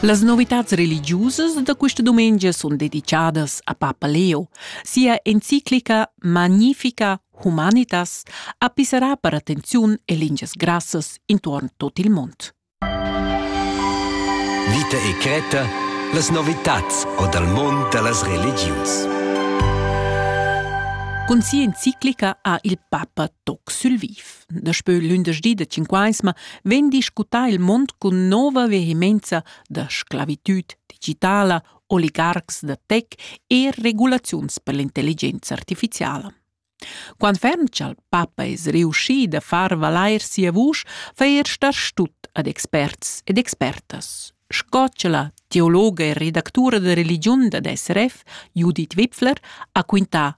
Las novitads religiusas da questa dumengia sun dedichadas a Papa Leo. Sia enciclica Magnifica Humanitas ha pisserà per attenziun e lingias grassas intuorn tot il mond. Vita e Creta, las novitats o dal mond da las religius. Con sia enciclica ha il Papa toc sul viv. Daspö lündeschdi da Cinquaisma vegn discutà il mond cun nova vehemenza da sclavitüd digitala, oligarcs da tech e regulaziuns per l'intelligenza artificiala. Quant ferm cha'l papa es riuschi da far valair sia vusch, fa eir star stut ad experts ed expertas, sco cha la teologa e redactura da religiun dad SRF, Judith Wipfler, ha quintà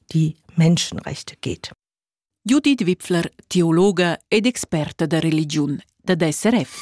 die Menschenrechte geht. Judith Wipfler, teologa ed experta da religiun dad SRF.